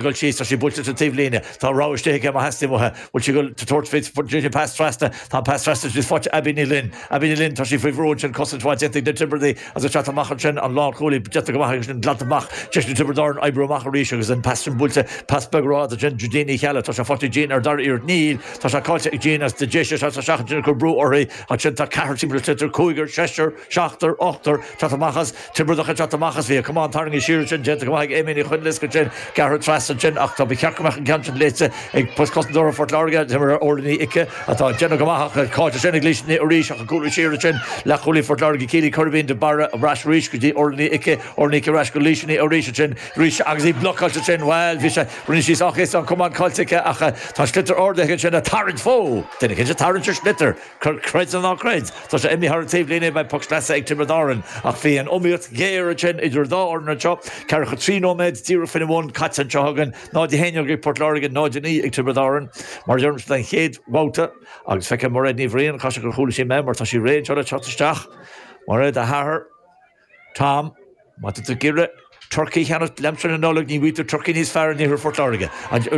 dul síos, tá sí buailte sa taobhlíne, tá rogha istigh aici má theastaíonn uaithi, bhfuil sí ag dul thar Fitz, bhfuil an pass trasna, tá an pass trasna, sé faighte ag Abbie Ní Fhloinn, Abbie Ní Fhloinn, tá sí faoi bhrú ansin cosaint mhaith déanta ag na Tiobradaigh ag seasamh amach ansin, an lánchúlaí déanta go maith aici sin glanta amach, deis ag Tiobraid Árann oibriú amach arís agus an pass sin buailte, pass beag ró-ard ansin do Jean Ní Cheallaigh, tá sé faighte ag Jean ar an dara iarracht, níl, tá sé caillte ag Jean as, Déise ag seasamh amach ansin ag cur brú uirthi ansin, tá ceathrar timpeall an tsliotair, cúigear, seisear, Seachtar, ochtar, teacht amach as, Tiobraideach ag teacht amach as, bhí, camán tarraingthe siar ansin, déanta go maith ag Aimée Ní Choinlisc ansin, gearrthar trasna ansin ach tá, ba cheart go mbeadh an ceann sin léite ag cosantóirí Phort Láirge, Timire, Órla Ní Ice atá ag déanamh go maith ach tá Cáit ansin ag Laoise Ní É arís ag ag cúlú siar ansin, Leath-Chúlaí Phort Láirge, Celia Coirbín, de Barra ar ais arís go dtí Órla Ní Ice, Órla Ní Ice ar ais go Laoise Ní É arís ansin, Laoise agus í blocáilte ansin, bhuel, bhí sé, rinne sí sách éasca an camán caite aici ach tá an sliotar ardaithe aici ansin ag tarraingt, whoa! Deireadh cinnte ag tarraingt ar sliotar! Creid nó ná creid, tá sé imithe thar an taobhlíne beidh poc sleasa ag Tiobraid Árann ach bhí an iomaíocht ghéar ansin idir an dá fhoireann anseo ceathracha trí nóiméad díreach faoina bhun caite anseo againn, 0-11 ag Port Láirge, 0-9 ag Tiobraid Árann. Mar a deirimse don chéad mbabhta agus feicim Mairéad Ní Bhriain, caithfidh sé gur chuala sí mé mar tá sí réidh anseo le teacht isteach. Mairéad, a hathair. Tom, Má tá tú ag iarraidh turcaí a cheannacht le haimsir na Nollag ní bhfaighidh tú turcaí níos fearr in iarthar Phort Láirge.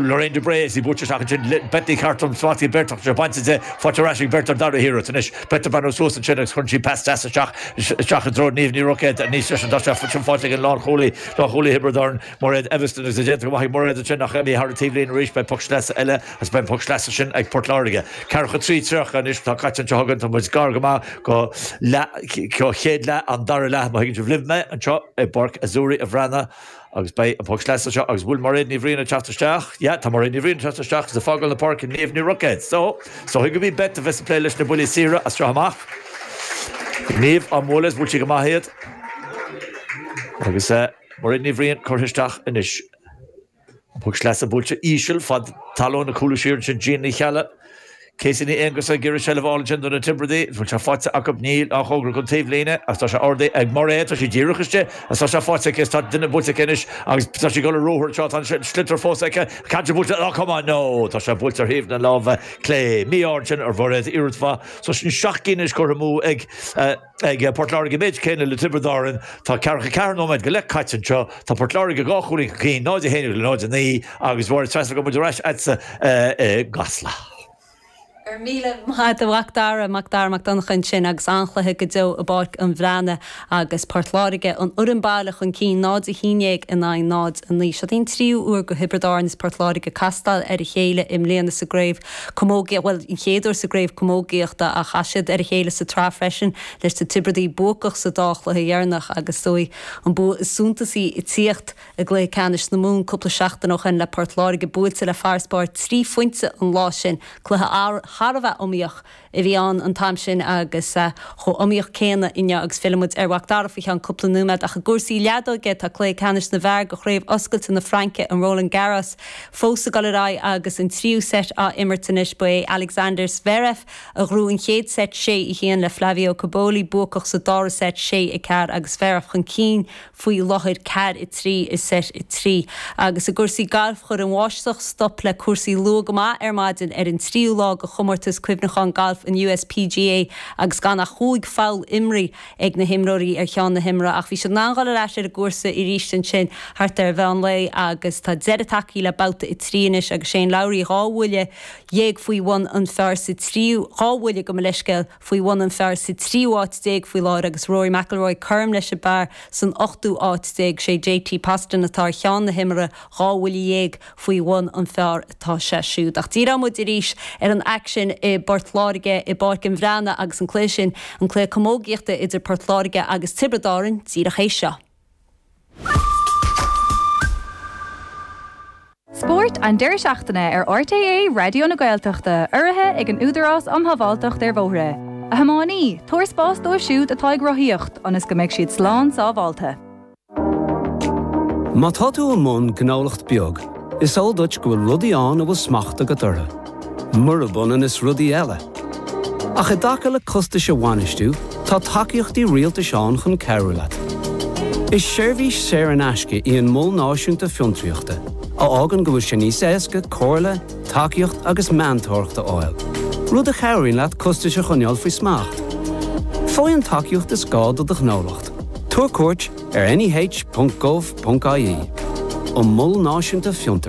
Lorraine de Brae, is í ag bualadh isteach ansin, Beth Ní Chartúin, smacht ag Beth ach sé bainte di, faighte ar ais ag Beth ar an dara hiarracht anois, Beth ag breathnú suas ansin agus cuireann sí pas deas isteach, isteach i dtreo Niamh Ní Roicéad, níos deise ná sin faighte ag an lánchúlaí, lánchúlaí Thiobraid Árann, Mairéad Evanston, Agus déanta go maith ag Mairéad ansin ach imithe thar an taobhlíne arís, beidh poc sleasa eile agus beidh an poc sleasa sin ag Port Láirge. Ceathracha trí, tríocha anois atá caite anseo againn, tá muid gar go maith go leath, an chéad leath an dara leath má thuigeann sibh leat mé, anseo i bPáirc Azzurri an Bhreathnaigh agus beidh an poc sleasa seo agus bhfuil Mairéad Ní Bhriain ag teacht isteach? Yeah, tá Mairéad Ní Bhriain ag teacht isteach agus ag fágáil na páirce Niamh Ní Roicéad. So, is dóigh gurb í Beth a bheas ag plé leis na buillí saoire as seo amach. Niamh, bhuel, bhuail sí go maith iad agus eh, Mairead Ní Bhriain curtha isteach anois. An Poc Sleasa buailte íseal feadh talún ag cúlú siar ansin Jean Ní Cheallaigh, Casey Ní Aonghusa ag iarraidh seilbh a fháil ansin do na Tiobradaigh agus bhfuil sé faighte acu níl, i ngar don taobhlíne agus tá sé ardaithe ag Mairéad tá sí díreach istigh agus tá sé faighte aici agus tá duine buailte aici anois agus tá sí ag dul ar ruathar anseo tá an sliotar fós aici Cá bhfuil buailte ard ó tá sé buailte ar thaobh na láimhe clé mí-ádh ansin ar Mhairéad iarracht mhaith fós ansin seacht gcinn anois curtha amú ag ag Port Láirge an méid céanna le Tiobraid Árann. Tá ceathracha ceathair nóiméad go leith caite anseo. Tá Port Láirge dhá chúilín chun cinn, 0 a 11 le 0 a 9, agus b'fhearr is féidir go mbeidh muid ar ais agatsa i gCasla. Go raibh míle maith agat a Mhac Dara, Mac Dara Mac Donncha ansin agus an-chluiche go deo i bPáirc an Bhreathnaigh agus Port Láirge, an fhoireann baile, chun cinn, 0 a 11 in aghaidh 0 a 9. Seo í an tríú uair do Thiobraid Árann is Port Láirge ag castáil ar a chéile i mbliana sa gcraobh. Camógaíocht, bhuel, an chéad uair sa gCraobh Camógaíochta a chas siad ar a chéile sa tsraith freisin leis na Tiobraidigh buacach sa dá chluiche dheireanach agus sé an bua is suntasaí ag tíocht i gcluiche ceannais na Mumhan cúpla seachtain ó shin le Port Láirge buailte le farasbarr trí phointe an lá sin, cluiche thar a bheith iomaíoch. a bhí ann an t-am sin agus chomh iomaíoch céanna inniu agus fillimid ar Mhac Dara faoi cheann cúpla nóiméad ach i gcúrsaí leadóige tá cluiche ceannais na bhfear de Chraobh Oscailte na Fraince, an Roland Garros, fós ag dul ar aghaidh agus an tríú seit á imirt anois. Ba é Alexander Zverev a ghnóthaigh an chéad seit sé, a haon le Flavio Cobolli, buacach sa dara seit, sé, a ceathair, agus Zverev chun cinn. faoi láthair ceathair a trí i seit a trí, agus i gcúrsaí gailf chuir an bháisteach stop le cúrsaí luath go maith ar maidin ar an tríú lá de chomórtas cuimhneacháin gailf an US PGA agus gan ach chúig pholl imrithe ag na himreoirí ar cheann na himeartha ach bhí siad in ann dul ar ais ar an gcúrsa arís ansin thart ar mheán lae agus tá deireadh tagtha le babhta a trí anois agus Shane Lowry dhá bhuille dhéag faoi bhun an phar sa tríú dhá bhuille gabh mo leithscéal faoi bhun an phar sa tríú áit déag faoi láthair agus Rory McIlroy cothrom leis an bpar san ochtú áit déag. Sé JT Poston atá ar cheann na himeartha dhá bhuille dhéag faoi bhun an phar atá sé siúd. Ach díreoidh muid arís ar an aicsean i bPort Láirge i bPáirc an Bhreathnaigh agus an cluiche sin, an cluiche camógaíochta idir Port Láirge agus Tiobraid Árann, díreach théis seo. Spórt an Deireadh seachtaine ar RTÉ Raidió na Gaeltachta, urraithe ag an Údarás um Shábháilteacht ar Bhóithre. A thiománaí, tabhair spás dóibh siúd atá ag rothaíocht ionas go mbeidh siad slán sábháilte. Má tá tú i mbun gnólacht beag, is eol duit go bhfuil rudaí ann a bhfuil smacht agat orthu. murab ionann is rudaí eile. Ach i dtaca le costais a bhainistiú, tá tacaíochtaí rialtais ann chun cabhrú leat. Is seirbhís saor in aisce é an Mol Náisiúnta Fiontraíochta, a fhágann go bhfuil sé níos éasca comhairle, tacaíocht agus meantóireacht a fháil, rud a chabhraíonn leat costais a choinneáil faoi smacht. Faigh an tacaíocht is gá do do ghnólacht. Tabhair cuairt ar neh.gov.ie an Mol Náisiúnta Fiontair.